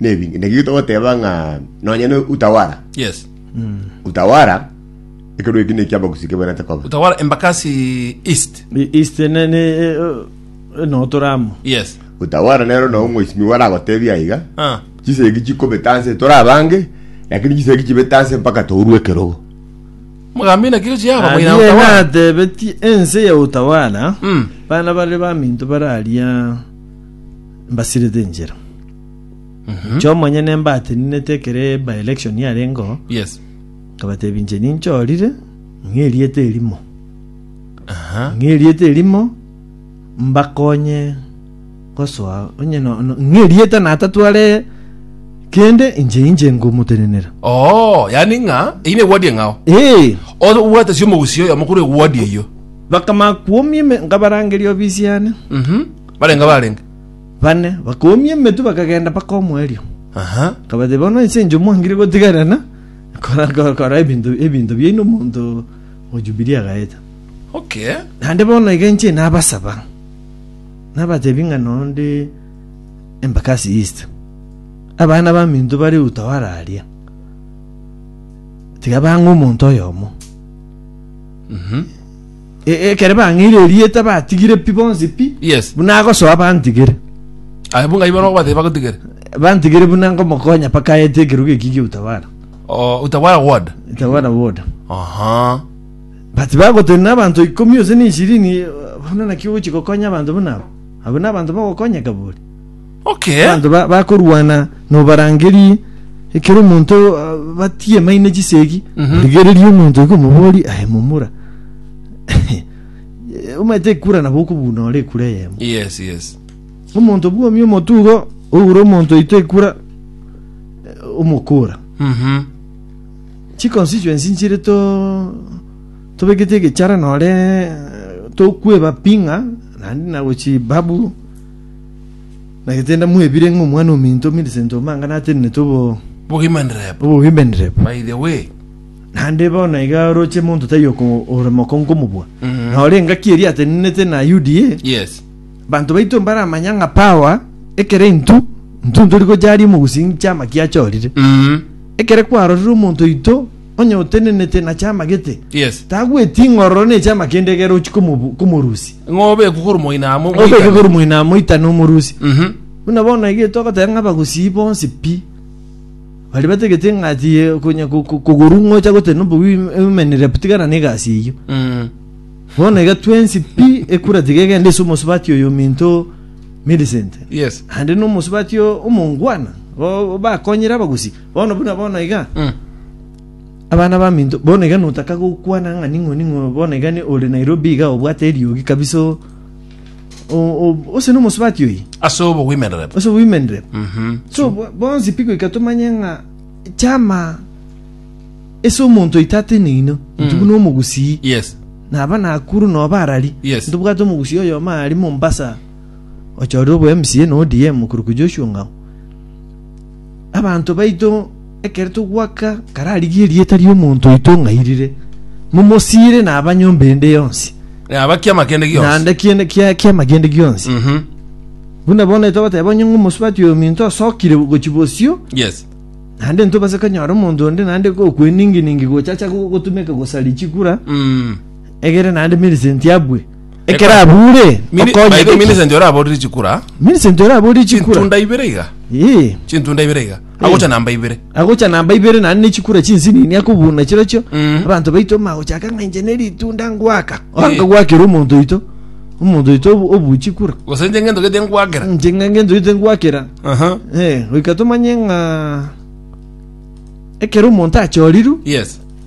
Nebi- Naki togoteba ng'a nonye ne utawara Yes. utawara ekerwa eki neki abagusi kebwenerete koba Utawala Embakasi East. I- East ne ne eh, eh, no toramo. Yes. utawara nero nao mheshimiwa waragotebia iga Ah. chisegi chikobeta nse torabange lakini chisegi chibeta nse mpaka tourwe ekerogo Mugambi na kiro chiaba moina Arie utawala. natebeti ense ya utawala Mm. bana bare baminto bararia mbasirete enchera. Inche omonyene mbateninete ekero by election yarengeo Yes. nkabatebia inche ninchorire ng'erieta erimo Aha. ng'erieta erimo mbakonye gosoa onye no- no- ng'erieta natatware kende inche inche ngomotenenera Oh, yani ng'a iyi ne ward eng'ao. ee Obwate sio mogusi oyo mokuru ward eyo. bakamakuomia ime nkabarangeria obisi yane Mhm. Barenge abarenge. bane, bakoumia emetwe bakagenda mpaka omoerio. Aha. Akabatebia, Bono ense enchwe mwangire gotigarana kora- kora- kora ebinto ebinto biaino omonto o Jubilii agaeta. Okay. Naende bono iga inche nabasaba, nabatebia ng'a noo nde Embakasi East, abana baminto bare Utawala aria, tiga bang'e omonto oyomo. Mhm. E- Ekere bang'eire erieta batigire pi bonsi pi. Yes. Buna agosoa bantigire. Aye bunga ibo nogobateba bagotigere. Bantigire buna ngomokonya paka aete ekeruga eki gi'utawala. Oh, utawala ward. Utawala woda. Aha. But bagotenena abanto ikomi ose na ishirini bono naki ogochi gokonya abanto buna abo. Abo na abanto bagokonyeka bori. Okay. Abanto ba- bakorwana nobarangerie, ekero omonto ah, batiemaine chisegi, Mhm. origererie omonto iga omoborie, aye momura. Omanyete ekura nabo okobuna ore ekura eyemo. Yes, yes. Omonto bwomi omotugo, oure omonto oito ekura, eh, omokora. Mhm. chiconstituency nchire to tobegete egechara nore tokweba ping'a naende nagochi babu Nagetenda mwebire ng'a omwana ominto Millicent Omang'ana atenenete obo Bogima ndirebo. obogima ndirebo. By the way. Naende bono iga oroche monto taiyo oko- ore mokongo mobua. Mhm. Nore engaki eria atenenete na UDA. Yes. Banto baito mbaramanya ng'a power ekero intwe intwe ntori gocharia omogusii chiama kiachorire. Mhm. Ekere kwarorire omonto oito onye otenenete na chiama gete, Yes. tagweti ing'ororo ne chiama kende egere ochie komobu- komorusia. Ng'a obekwe korwa moina amo. Obeke moitane. korwa moina amo oitane omorusia. Mhm. Buna bono ege togoteba ng'a abagusii bonsi pi baria batagete ng'a ati eh, konya ko- ko- kogorwa ng'a ocha gotera nobobe oim- oimenere pu tigana na egasi eyio. Mm. Bono iga twensi pi ekura tiga egende ase omosubati oyo ominto Millicent. Yes. Ande nomosubati o- omongwana o- bakonyire abagusii. Bono buna bono iga Mm. abana baminto bono iga notaka gokwana ng'a ning'o ning'o bono iga ni ore Nairobi iga obwate eriogi kabisa o- o- o- ose nomosubati oyi ase obo women rep ose women rep Mhm. so bo- bonsi piko ikatomanye ng'a chama ese omonto oitate neino ntugu Mm. nomogusii yes naba nakuru noba arari Yes. ntobwate omogusii oyomo ari mombasa ochorire obo mca na odm okuruku joshua ng'ao Abanto baito ekero togwaka kararigie erieta ri'omonto oito ng'airire, momosiire na aba nyomba ende yonsi, Eh, aba kiama kende gionsi. naende kiende kia kiama kiende gionsi. Mhm. Buna bono etogoteba onye ng'omosubati oyominto osokire gochia bosio, Yes. naende ntobase konyora omonto onde naende gokweningi-ningi gochacha go- gotumeka gosari chikura, Mm. egere naende Millicent abwe. Ekero abuure, Mini- okonye by the way, gaki? Millicent oraborire chikura Millicent oraborire chikura. chintunda ibere iga Ee. chintunda ibere iga agocha namba ibere agocha namba ibere nani nechikura chinsinini akobuna chirochio Mm. abanto baito magochaka ng'a inche neritunda ngwaka anga Eh. gwakera omonto oito omonto oito obu- obuchikura gose nche ngento gete nkwagera inche ng'a ngento oito ngwakera aha Eh, goika tomanye ng'a ekero omonto achorirwe yes